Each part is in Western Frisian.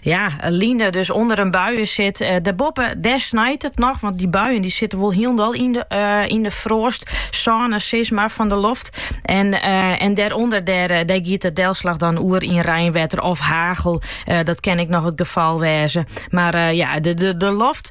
Ja, in line dy't dus ûnder yn buien sit. Eh, dêrboppe, dêr snijt it noch, want dy buien dy sitte wol hielendal yn de, uh, yn de froastsône, sis mar fan de loft. En, uh, en dêrûnder, dêr, eh, dêr giet de delslach dan oer yn reinwetter of hagel. Dat kin ek noch it gefal wêze. Mar ja, de, de, de loft,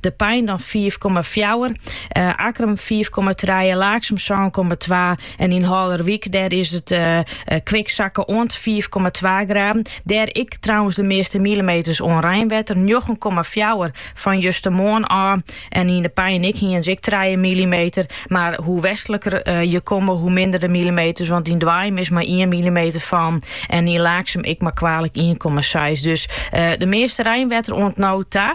De Pein dan fiif komma fjouwer, Akkrum fiif komma trije, Laaksum sân komma twa en yn Haulerwyk dêr is it kwik sakke oant fiif komma twa graden. Dêr ek trouwens de measte milimeters oan reinwetter, njoggen komma fjouwer fan justermoarn ôf. En yn De Pein ek, hienen se ek trije milimeter. Mar hoe westliker je komme, hoe minder de milimeters, want yn Doaium is mar ien milimeter fallen en yn Laaksum ek mar kwalik ien komma seis. Dus de measte reinwetter oant no ta.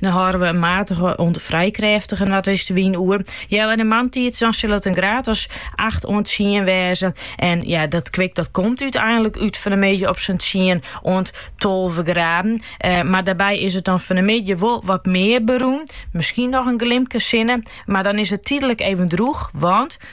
Dan hâlde we in matige oant frij krêftige noardwestewyn oer. Ja, yn de moarntiid dan sil it in graad as 8 oant 10 wêze. En ja, dat kwik dat komt úteinlik út fan 'e middei op sa'n 10 oant 12 graden. Eh, mar dêrby is it dan fan 'e middei wol wat mear berûn. Miskien noch in glimke sinne, mar dan is it tydlik even droech, want